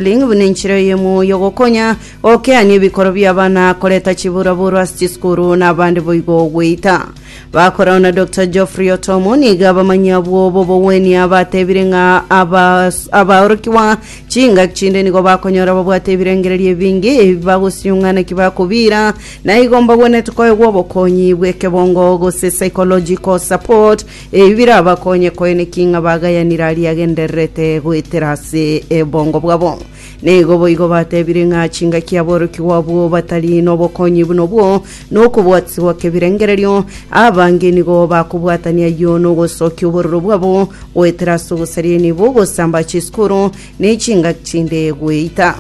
Ring buna enchera eye moyo ogokonya, okeanie ebikoro bi'abana, koreta chiburaburo ase chisukuru, na abande boigo goita. Bakorao na Doctor Geoffrey Otomo nigo abamanyi abwo b'obogwenia batebire ng'a abas- abaorokigwa chingaki chinde nigo bakonyora babwate ebirengererio ebinge ebi bagosiung'a naki bakobiira, na igo mbagwenerete koegwa obokonyi bw'ekebongo gose psychological support Ebi birabakonye koeneki ng'a bagayanire aria agendererete goetera ase ebongo bwabo. Naigo boigo batebire ng'a chingaki aborokigwa abwo batari nobokonyi buna obwo, na okobwatisibwa kebirengererio, abange nigo bakobwatania ayio nogosokia obororo bwabo goetera ase ogosaria nibo ogosamba chisukuru, ne chinga chinde gweita.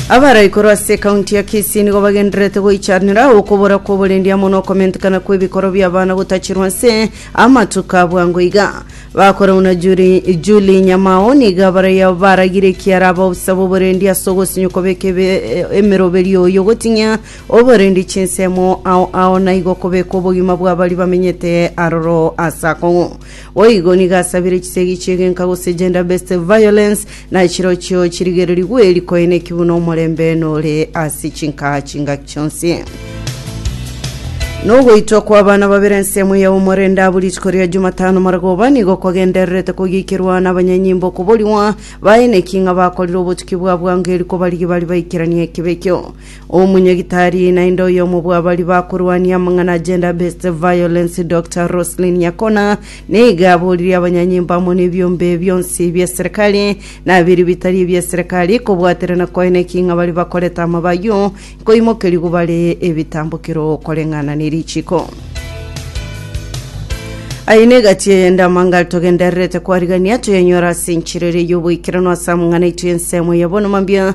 Abarai korwa ase ekaunti ya Kisii nigo bagendererete goichanera okobora kw'oborendi amo n'okomentekana kw'ebikoro bi'abana gotachirwa ase amatuko a bwango iga. Bakora buna Juli- Julie Nyamao nigo abarai baragire ekiara abaofisa b'oborendi ase ogosinya okobeka ebe- emeroberio oyo gotinyia oborendi chinsemo ao ao naigo kobeka obogima bw'abari bamenyete aroro ase akong'u. Boigo nigo asabire chisegi chi'egenka gose gender-based violence, na chirochio chirigererigwe rikoineki buna omorembe nore ase chinkaha chingaki chionsi. Nogoitwa kwa abana babere ensemo ya omorenda bu rituko ria Jumatano Maragoba nigo kwagendererete kogiikerwa n'abanyanyimbo okoborigwa baineki ng'a bakorire obotuki bwa bwango eri kobarigia bari baikeranie ekebeekio. Omonyagitari naende oyomo bw'abaria bakorwania amang'ana a gender based violence Dr Roselyn Nyakona nigo aboririe abanyanyimbo amo nebiombe bionsi bia serikali na ebiria bitari ebia serikali kobwaterana koene ki ng'a baria bakorete amaba ayio nkoimokerigwa bare ebitambokero koreng'ana ne richiko. Aye ne egati eye ndamanga togendererete kwarigania toyenyora ase enchera ere y'oboikeranu ase amang'ana aito y'ensemo ya bono mambia